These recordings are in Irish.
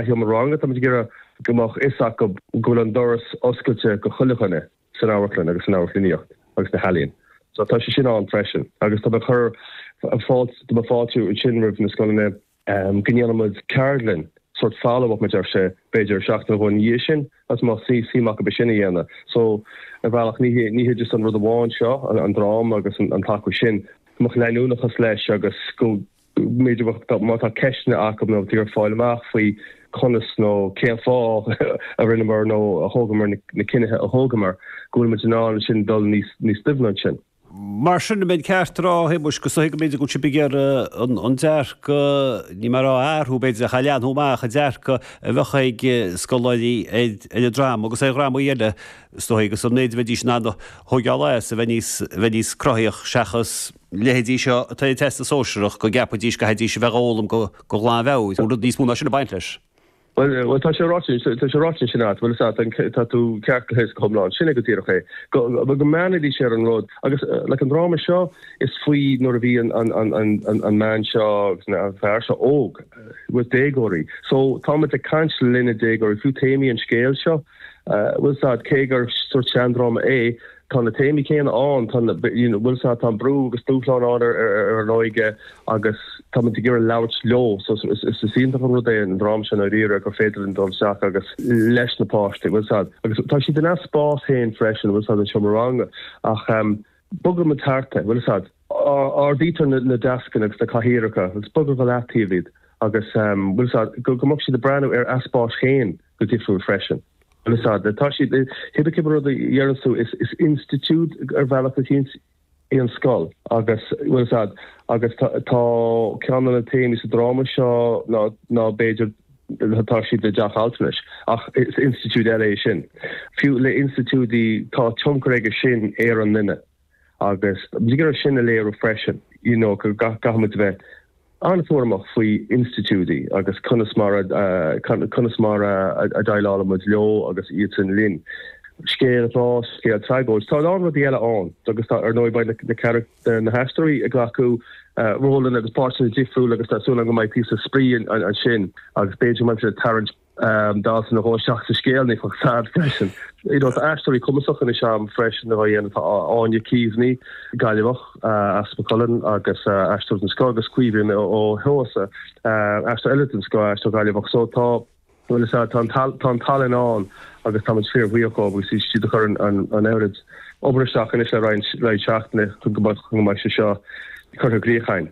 am ranga, táimid ag iarraidh go mbeadh a fhios acu go bhfuil an doras oscailte do chuile dhuine san amharclann agus san amharclannaíocht agus sna healaíona. So tá sé sin ann freisin. Agus tá mé ag cur fáilte, tá mé ag fáiltiú ansin roimh na scoileanna, go ndéanaimid ceardlann sórt follow up mar a déarfá b'fhéidir seachtain nó dhó ina dhiaidh sin dá mbeadh suim acu é sin a dhéanamh. So ar bhealach ní hé, ní hé just an rud amháin seo, an dráma agus an t-achar sin, go mbeadh leanúnachas leis agus go. Má tá ceisteanna acu nó ag iarraidh fáil amach faoi conas nó cén fáth a rinneamar nó a thógamar na cinntí a thógamar, go bhfuil muid in ann ansin dul níos doimhne ansin. Mar sin an mbeinn ceart a rá, a Shéamuis, go dtuigfidh muid go bhfuil sibh ag iarraidh an dearcadh, ní maith a rá a athrú, b'fhéidir, ach a leathnú amach, an dearcadh a bheadh ag scoláirí ar an dráma agus ar dhrámaí eile is dóigh, agus an méid a bheidís in ann a thógáil as, a bheith níos cruthaithí seachas. na leithéidí seo atá ag an Teastas Sóisearach go gceapfaidís go gcaithfidís a bheith ag foghlaim de ghlanmheabhair, bhfuil rud níos mó ná sin ag baint leis? Bhuel, bhuel, tá sé ráite, tá sé ráite ansin agat, bhfuil a fhios agat, tá tú ceart go huile is, go hiomlán, sin é go díreach é, go, go mbainidís ar an rud, agus, like, an dráma seo, is faoi nuair a bhí an, an, an, an, an, an bhean seo, agus na, an fear seo óg, ina ndéagóirí, so, táimid ag caint leis na déagóirí, fiú téamaí an scéil seo, bhfuil a fhios agat, cé gur sórt seandráma é, Tá na téamaí céanna ann, tá na, you know, bhfuil a fhios agat, tá an brú agus dúshláin ann ar an óige agus táimid ag iarraidh labhairt leo. So is, is iontach an rud é an dráma seo i ndáiríre gur féidir linn dul isteach agus leis na páistí, bhfuil a fhios agat, agus tá siad ina spás féin freisin, bhfuil a fhios agat, an seomra ranga ach ehm bogaimid thart é, bhfuil a fhios agat, ardaítear na deascanna agus na cathaoireacha agus bogtar go leataobh iad agus ehm, bhfuil a fhios agat, go mbeadh siad ag breathnú ar a spás féin go difriúil freisin. Bhfuil a fhios agat. Tá siad i Hibica, rud a deireanns tú, is institiúid ar bhealach eicínt í an scoil agus, bhfuil a fhios agat, agus tá ceann de na téamaí sa dráma seo ná, ná b'fhéidir, tá siad i dteach altranais, ach is institiúid eile é sin. Fiú le institiúidí, tá tionchar aige sin ar an nduine. agus tá muid ag iarraidh é sin a léiriú freisin, you know go gcaithfimid a bheith an-chúramach faoi institiúidí agus conas mar a, conas mar a dhéileálaimid leo agus iadsan linn. Scéal grá, scéal tragóideach, tá a lán rudaí eile ann agus tá, ar ndóigh beidh na carach, na haisteoirí ag glacadh rólanna agus páirteanna difriúla agus tá súil agam go mbeidh píosa spraoi ansin agus b'fhéidir go mbeidh muid ag tarraingt, dalta nó dhó isteach sa scéal, bhfuil a fhios agat freisin. You know tá aisteoirí cumasacha againn san am freisin a dhéanamh tá Áine Keaveney, Gaillimheach as Maigh Cuilinn agus aisteoir den scoth agus Caoimhín Ó hEoghasa aisteoir eile den scoth, aisteoir Gaillimheach so tá bhfuil a fhios agat tá an tal tá an tallann ann agus táimid fíorbhuíoch dhóibh agus tá siad ag cur an an an oiread obair isteach anois le roinnt roinnt seachtainí chun go mbeadh chun go mbeidh sé seo curtha i gcríoch againn.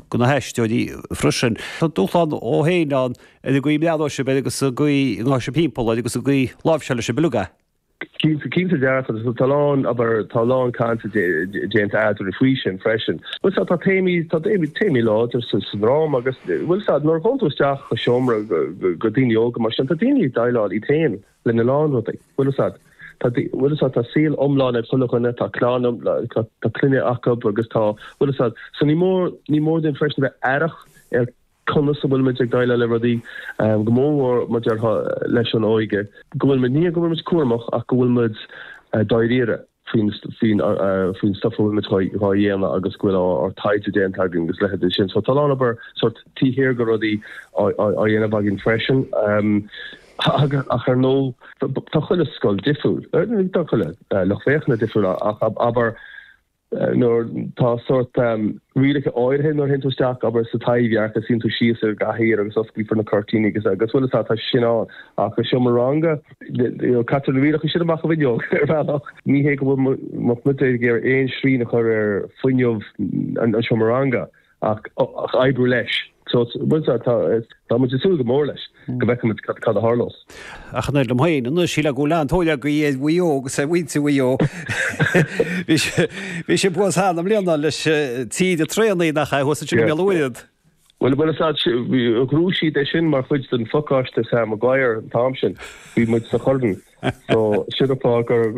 go na haisteoirí freisin. Tá dúshlán ann féin ann ar an gcaoi a mbreathnóidh sibh air agus an gcaoi a ngabhfaidh sibh timpeall air agus an gcaoi a láimhseálfaidh sibh uilig é. Cinnte, cinnte dearfa. Tá a lán, abair, tá a lán caint déanta eadrainn faoi sin freisin. Bhuel, sea, tá téamaí, tá téamaí láidir sa dráma agus, bhuel, sea, nuair a ghabhann tú isteach sa seomra go daoine óga mar sin, tá daoine ag déileáil iad féin, lena lán rudaí. Bhfuil fhios a'd. Tá, bhfuil fhios a'd, tá saol iomlán ag chuile dhuine, tá clann iomlán, tá, tá clainne acub agus tá, bhfuil fhios a'd. So ní mór, ní mór dúinn freisin bheith aireach ar conas a bhfuilimid ag déileáil le rudaí, go mór mhór mar a déarfá leis an óige, go bhfuilimid, ní go bhfuilimid cúramach ach go bhfuilimid dáiríre. faoin stuif a bhfuil muid dhá dhéanamh agus go bhfuil ár dtaighde déanta againn agus a leithéid de sin. So tá a lán obair sórt taobh thiar de rudaí á dhéanamh againn freisin. Ach ar ndóigh, tá chuile scoil difriúil. Tá chuile lucht féachana difriúil ach abair nuair tá sórt rialacha áirithe nuair a théann tú isteach abair sa Taibhdhearc agus suíonn tú síos ar an gcathaoir agus osclaífear na cuirtíní agus chuile, tá sin ann ach i seomra ranga Caitear na rialacha sin amach an fhuinneog, ar bhealach. Ní hé go bhfuil muid ag iarraidh aon srian a chur ar fuinneamh an seomra ranga, ach oibriú leis. Tá muid ag súil go mór leis, go bhfeicfidh muid cad a tharlós. Ach an oiread liom féin, anois, sílim go bhfuil an-tóir againn ar Mhaigh Eo agus ar mhuintir Mhaigh Eo. Bhí sé buan thar na mbliana leis, tríd an traenáil, nach ea, thuas ansin i mBéal an Mhuirthead. Bhuel, bhuel, is ea. D'eagraigh siad é sin mar chuid den phacáiste Sam Maguire an t-am sin. Bhí muid sa Chorn. So, sin an fáth gur.